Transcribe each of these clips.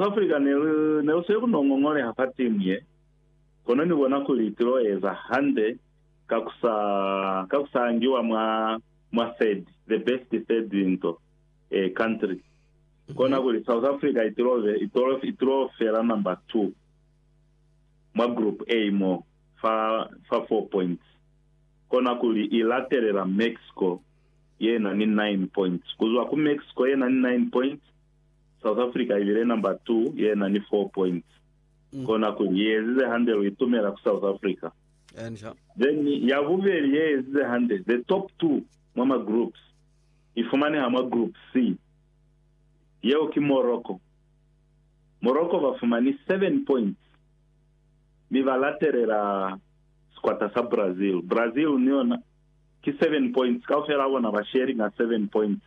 Afrika ne lu, ne lu sile ku no ngongoleha fa timu ye, kono ni bona kuli ti lo eza hande ka ku sa, ka ku sa angiwa mwa, mwa third, the best third nto, eh, country. Kona kuli South Afrika i tilo be, i tolo, i tilo fela number two mwa Group A mo, fa, fa four points. Kona kuli i latelela Mexico ye na ni nine points. Ku zwa ku Mexico ye na ni nine points, South Africa i bile number two ye na ni four points. Kona kuli ye ezize hande lu itumela ku South Africa. Enca. Then ya bubeli ye ezize hande, the top two mwa ma groups, i fumaneha mwa group C. Yeo ki Morocco. Morocco ba fumani seven points mi ba latelela sikwata sa Brazil. Brazil ni yona ki 7 points, kaufela ha bona ba sharinga 7 points,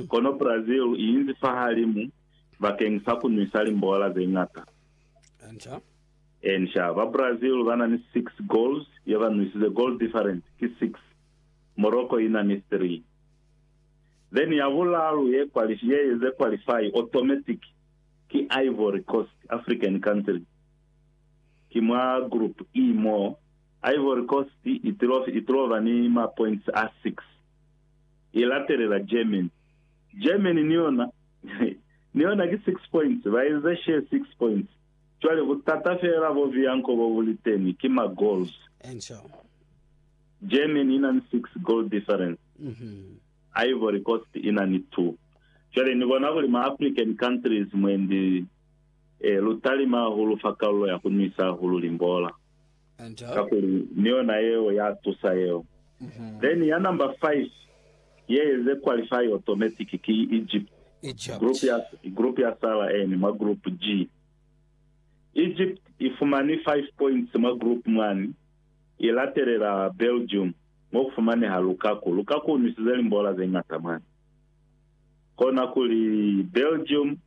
kono Brazil i inzi fahalimu bakeng sa ku nwisa limbola ze ñata. Encia, ba Brazil ba na ni 6 goals ye ba nwisize, goal difference ki 6, Morocco i na ni 3. Then ya bulalu ye ze qualify automatic ki Ivory Coast, African country, ki mwa group E moo. Ivory Coast i tuloba ni mapoints a 6, i latelela Germany. Germany ni yona, ni yona ki 6 points, ba inze share 6 points. Cwale butata feela bo Bianco bo bu li teni ki ma goals. Germany i na ni 6 goal difference, Ivory Coast i na ni 2. Cwale ni bona kuli ma African countries mwendi lu talima hahulu fa kalulo ya ku nwisa hahulu limbola. kakuli ni yona yeo ya tusa yeo. Then ya number five ye eze qualify automatic ki Egypt, group ya group ya sala eni mwa group G. Egypt i fumani five points mwa group mwani, i latelela Belgium mo ku fumaneha Lukaku. Lukaku u nwisize limbola ze ñata mwani. Kona kuli Belgium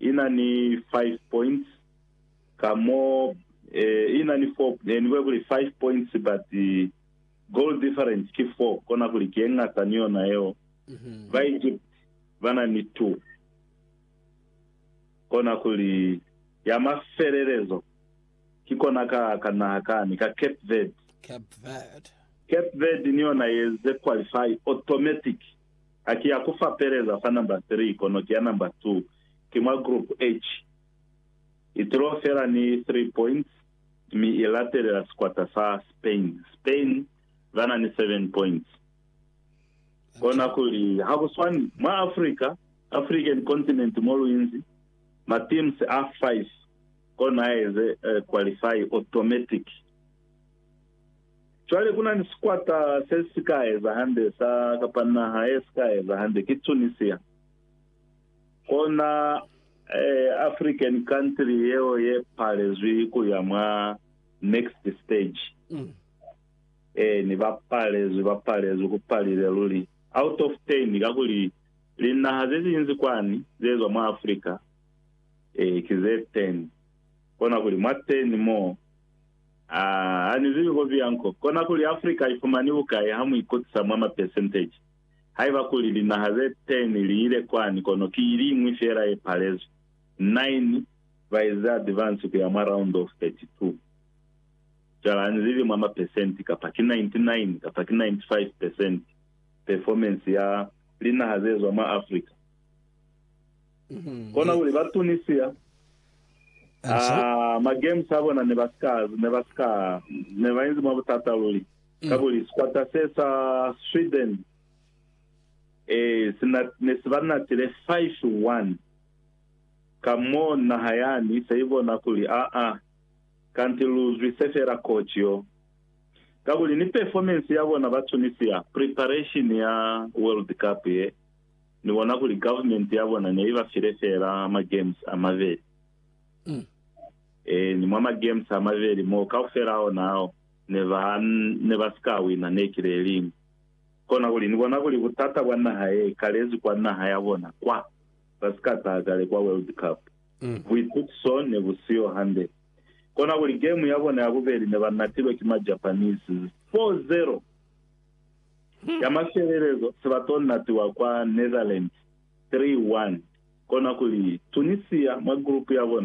i na ni five points ka mo eh, ina ni four, eh, ni kuya kuli five points but goal difference ki four, kona kuli ki engata ni yona yeo. Mhm. Ba Egypt ba na ni two, kona kuli ya mafelelezo ki kona ka ka naha kani ka Cape Verde. Cape Verde. Cape Verde ni yona yeze qualify automatic, aki ya kufapeleza fa number three kono ki ya number two, ki mwa group H. Itulo fela ni 3 points mi i latelela sikwata sa Spain. Spain ba na ni 7 points. Kona kuli ha ku swani mwa Africa, African continent, mo lu inzi, ma teams a 5 kona a eze qualify automatic. Cwale ku na ni sikwata se si ka eza hande sa kapa naha ye si ka eza hande, ki Tunisia. Kona African country yeo ye palezwi kuya mwa next stage. Eeni, ba palezwi, ba palezwi, ku palile luli. Out of ten, kakuli linaha ze zinzi kwani ze zwa mwa Africa ki ze ten. Kona kuli mwa ten mo, aa, ha ni zibi ko biyanko. Kona kuli Africa i fumani bukai ha mu ikutisa mwa ma percentage? Haiba kuli linaha ze ten li ile kwani, kono ki iliñwi feela ye palezwi. Nine ba eza advance ku ya mwa round of 32. Cwale ha ni zibi mwa mapesenti kapa ki 99 kapa ki 95 pesenti performance ya linaha ze zwa mwa Africa. Kona kuli ba Tunisia, aa, ma games a bona ne ba si ka, ne ba si ka, ne ba inzi mwa butata luli. Kakuli sikwata se sa Sweden si ne si ba natile 5-1, ka mo naha yani se i bona kuli aa, kanti lu zwise fela coach yo. Kakuli ni performance ya bona ba Tunisia preparation ya World Cup ye, ni bona kuli government ya bona ne i ba file fela ma games a mabeli. Ee, ni mwa ma games a mabeli moo, kaufela a ona ao. ne ba ne ba si ka wina ne ki le liñwi. Kona kuli ni bona kuli butata bwa naha ye ikalezi kwa naha ya bona kwa ba si ka taha kale kwa World Cup, buitukiso ne bu siyo hande. Kona kuli game ya bona ya bubeli ne ba natilwe ki ma Japanese 4-0. Ya mafelelezo se ba to natiwa kwa Netherlands 3-1. Kona kuli Tunisia mwa group ya bona